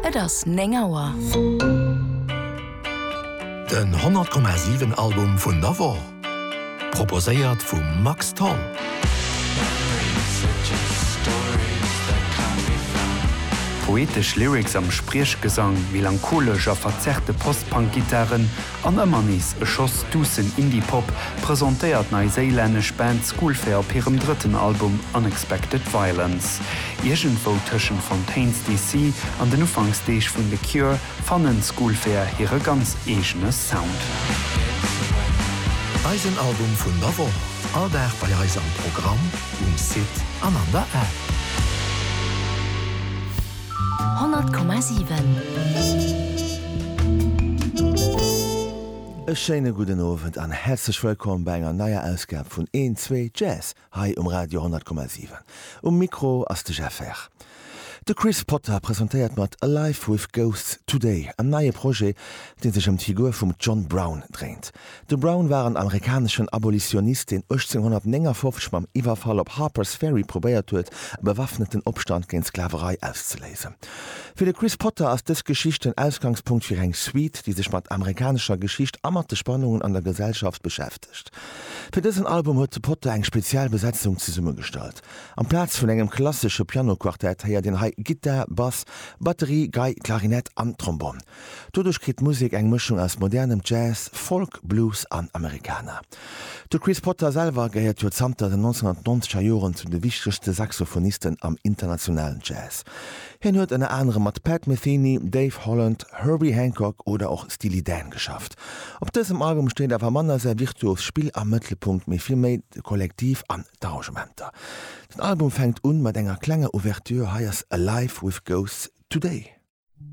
Et ass néng Auer. Den 100,7 Album vun der Woch, proposéiert vum Max Tholl. Poetesch Lyrics am Spriechgesang, melancholesch a verzerrte Post-Punk-Gittaren An ëmmer nees e Schoss duussen Indie-Pop presentéiert d'neiséilännesch Band Schoolfair op hirem drëtten Album Unexpected Violence. Iergendwou tëschent Fontaines DC an den Ufanksdeeg vun The Cure fannen Schoolfair hire ganz eegene Sound. Eisen Album vun der Woch, all Dag bei eis am Programm, um Site an an der App. 100,7. E schéine gudden Owend an häerzlech wëllkomm bei enger neier Ausgab vun Een, Zwee, Jazz hei um Radio 100,7. Um Mikro ass de Jeff Herr. De Chris Potter presentéiert mat Alive With Ghosts Today en neie Projet, dee sech ëm d'Figur vum John Brown dréint. De Brown war en amerikaneschen Abolitionist, deen 1859 mam Iwwerfall op Harpers Ferry probéiert huet, e bewaffneten Opstand géint d'Sklaverei auszeléisen. Fir de Chris Potter ass dës Geschicht den Ausgangspunkt fir eng Suite, déi sech mat amerikanescher Geschicht a mat de Spannungen an der Gesellschaft beschäftegt. Fir dësen Album huet de Potter eng speziell Besetzung zesummegestallt. Amplaz vun engem klassesche Pianoquartett héiert een hei Gittar, Bass, Batterie, Gei, Klarinett an Trombonn. Doduerch kritt d'Musek eng Mëschung aus modernem Jazz, Folk, Blues an Americana. De Chris Potter selwer gehéiert jo zanter den 1990 er Joren zu de wichtegste Saxophonisten am internationalen Jazz. Hien huet ënner anerem mat Pat Metheny, Dave Holland, Herbie Hancock oder och Steely Dan geschafft. Op dësem Album steet awer manner säi virtuost Spill am Mëttelpunkt, mee vill méi de Kollektiv an d'Arrangementer. Den Album fänkt un mat enger klenger Ouverture, hei ass Alive With Ghosts Today.